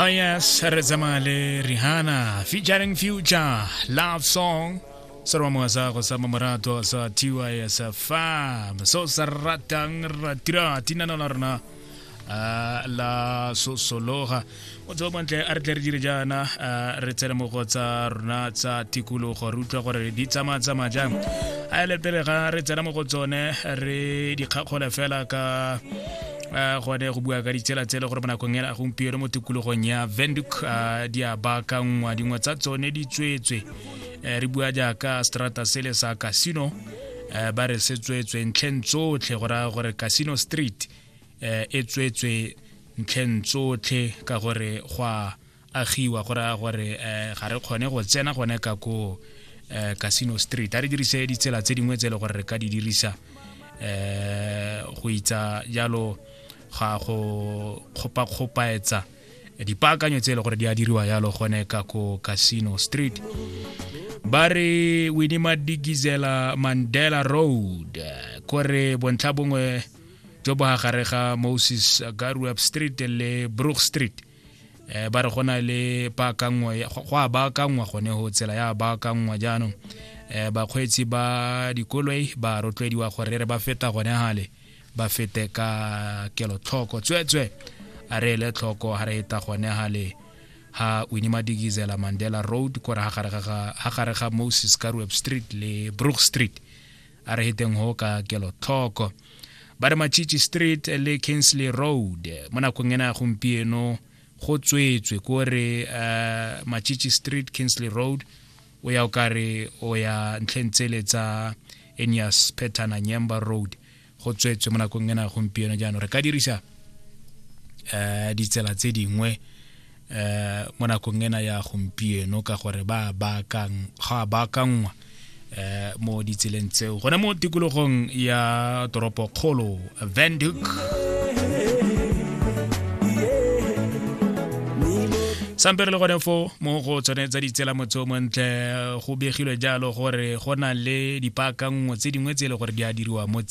Oh yes, re tsamaya le Rihanna featuring Future Love Song. Sarwa mo sa go sa mamorato sa TYSFM. So sa ratang ratira tinana la rona ah, la sosologa o tsebo bontle a re tle re dire jaana ah, re tsene mo go tsa rona tsa tikologo re utlwa gore di tsamaya tsamaya jang a ele pele ga re tsena mo go tsone re dikgakgole fela ka a gone go bua ka ditsela tsele gore bonakong ela gompieno mo tikologong ya venduk a di a baakangwa dingwe tsa tsone di tswetswe eh, re bua jaaka strata sele sa casino eh, ba re se tswetswe ntlheng tsotlhe go raya gore casino street eh, e tswetswe ntlheng tsotlhe ka gore gwa agiwa go raya gore um ga re kgone go tsena gone ka ko um casino street a re dirise ditsela tse dingwe tse e le gore re ka di dirisa um go itsa jalo ga go kgopakgopaetsa dipaakanyo tse e le gore di a diriwa jalo gone ka ko casino street ba re winima digizela mandela road kore bontlha bongwe jo bo gare ga moses garuap street le brook street eh ba re go na le baakangwa go a baakangwa gone go tsela ya baakangwa jaanong eh bakgweetsi ba dikoloi ba rotloediwa gore re ba feta gone gale ba fete ka kelotlhoko tsweetswe a re ele tlhoko ga re eta gone gale ha wini madigizela mandela road kore ha gare ga moses ka street le brook street a re heteng go ka kelotlhoko ba re machichi street le kinsley road mo nakong ena gompieno go tswetswe ko re uh, eh, machichi street kinsley road o ya o kare o ya ntlheng tsele tsa enias petana nyemba road go tswetswe mo nakong ena gompieno jaanong re ka dirisa um ditsela tse dingwe eh mo nakong ena ya gompieno ka gore ba bakang ga bakangwa eh mo ditseleng tseo gone mo tikologong ya toropo kgolo Vanduc sampere le gone fo mo go tsone tsa ditsela motse o montle go begilwe jalo gore go na le dipaakanngwe tse dingwe tse e le gore di a diriwa mo